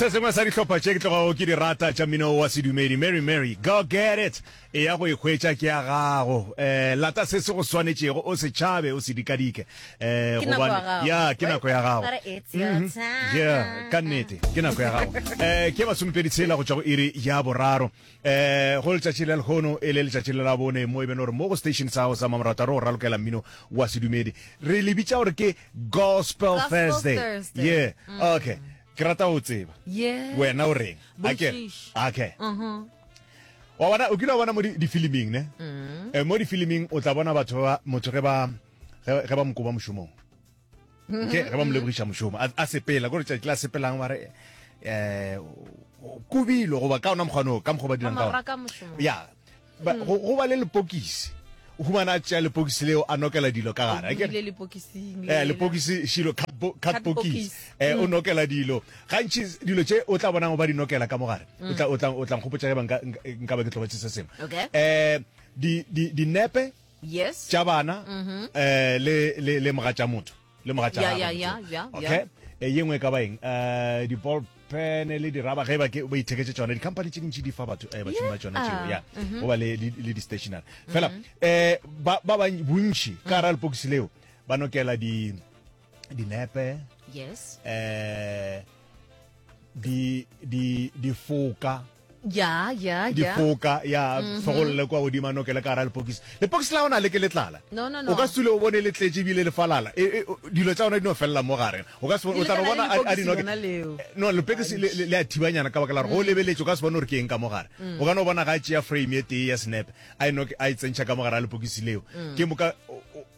se sengwe sa dihlopha tše ke tlogago ke di rata tša mmino wa sedumedi mary mary go get it e ya go ikgwetša ke ya gago um lata se se go swanetšego o se tšhabe o se dikadike um ya ke nako ya gago mhm. ya ka nnete ke nako ya gago um ke masometedi tshela go tšwa go iri ya boraro eh go letšatši la lekgono e le letšatši le la bone mo e bene gore mo go station sa gago sa mamorataro go ralokela mmino wa sedumedi re le bitša gore ke gospel Gospel thursday Thursday. Mm. ye okay ke rata go tseba Yes. wena o reng A ke re? Botšiši. okay Mhm. wa bona o kile wa bona mo di- difiliming ne Mm. Eh, mo difiliming o tla bona batho ba motho ge ba ge ge ba mokoba mošomong nke ge ba mo lebogiša mošomo a- a sepela kore tšatši la sepelang ba re um kobilo goba ka ona mokgwanoo ka mokgwa o ba dirang ka ona maraka mošomo ya ba- go go ba le lepokisi o humana a tšea lepokisi leo a nokela dilo ka gare akere? le lepokising eh lepokisi shilo cardbox Cardbox. eh o nokela dilo gantši dilo tše o tla bonang ba di nokela ka mogare o tla o tla o tla nkgopotša ge ba nka nka- nka ba ke tlobatše se sengwe Okay. eh di di dinepe yes tša bana mm-hmm. eh, le le le moga tša motho le moga tša okay e ye nngwe ka baeng eh di ball pen le di raba ge ba ke ba itheketse tsone di company tse dintsi di fa batho eh batho ba tsone tšeo ya go mm-hmm. ba le le di stationary fela mm-hmm. eh ba ba bontši ka ra le box leo ba nokela di dinepe yes eh di di di foka ya ya ya difoka ya mhm. fegolole kwa godimo ano ke le ka ra lepokisi lepokisi la ona le ke letlala no no no o ka sule o bone le tletse bile le falala e, e, dilo tsa ona di no fella mo gare o ka se o tla bona a di no no lepokisi le a thibanyana ka bakela go mm. lebeletse o ka se bone gore ke eng ka mo gare mm. o ka no bona ga tšea frame e tee ya snap a ino a e tsentšha ka mo gare a lepokisi leo mm. ke mo ka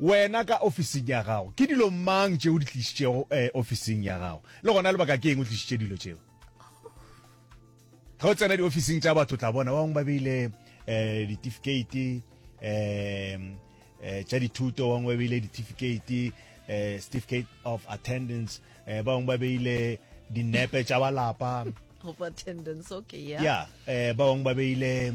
Wena ka ofising ya gago, ke dilo mang tše o di tlišitšego ofising ya gago? Le gona lebaka ke eng o tlišitše dilo tšeo? Ge o tsena diofising tša batho, tla bona ba bangwe ba beile um ditifikheiti um tša dithuto, ba bangwe ba beile ditifikheiti um certificate of attendance, um ba bangwe ba beile dinepe tša balapa of attendance okay yeah yeah um ba bangwe ba beile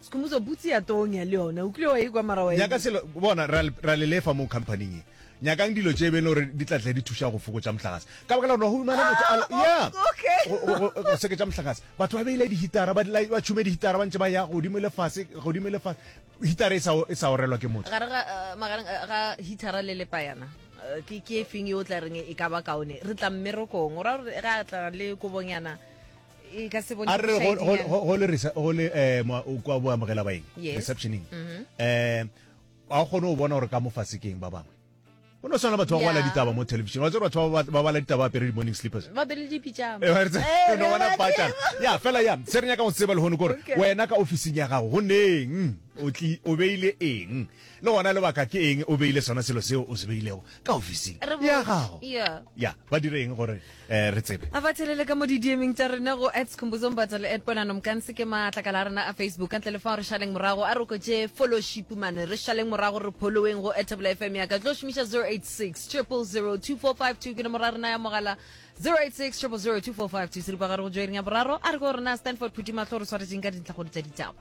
Skhumbuzo, butse ya tonya le yona o kile wa e kwa mara wa e nyaka selo bona ra le- ra le lefa mo companyng e nyakang dilo tše bene gore di tlatle di thuša go fokotša mohlagase ka baka la gore wa humana motho a le- ya okay. go- go- go- go seketša mohlagase batho ba beile dihitara ba dila- ba tšhume dihitara ba ntše ba ya godimo le fase godimo le fase hitara e sa o- e sa orelwa ke motho gare ga eh, magareng eh, ga hithara le lepayana eh, ke ke e feng e o tla reng e ka ba kaone re tla mmerekong o ra gore ga a tla le kobonyana e ka se bone a re go- go- bošaedi go- go le resa- go le eh, mwa- o kwa bo amogela baeng Yes. receptioning Mhm. um a o kgone go bona gore ka mo fase ke eng ba bangwe o no tshwana le batho ba bala Yeah. ditaba mo television wa tsere batho ba ba- ba bala ditaba ba apere di-morning slippers ba bele dipitšama Eh, wa re tse- Eh, no bona re ba patšana. tseba. ya fela ya se re nyaka go tseba lehono kore Okay. wena ka ofising ya gago go neng o tli- o beile eng Le gona lebaka ke eng o beile sona selo seo o se beilego ka ofising Re ya botše. gago? Ya. Ya, ba dire eng gore eh, re tsebe? A ba tšhelele ka mo didiemeng tša rena go at Skhumbuzo Mbatha le at Ponano Mkansi ke maatlakala a rena a Facebook. Ka ntle le fao re šaleng morago a re oketše fološipu mane. Re šaleng morago re pholoweng go at Thapelo FM ya ka. Tlo šomiša 086 000 2452 ke nomoro ya rena ya mogala 086 000 2452. Seripagare go joering ya boraro a re ke gore na Stanford Phuthimahlo re swaretšeng ka dintlhakgolo tša ditaba.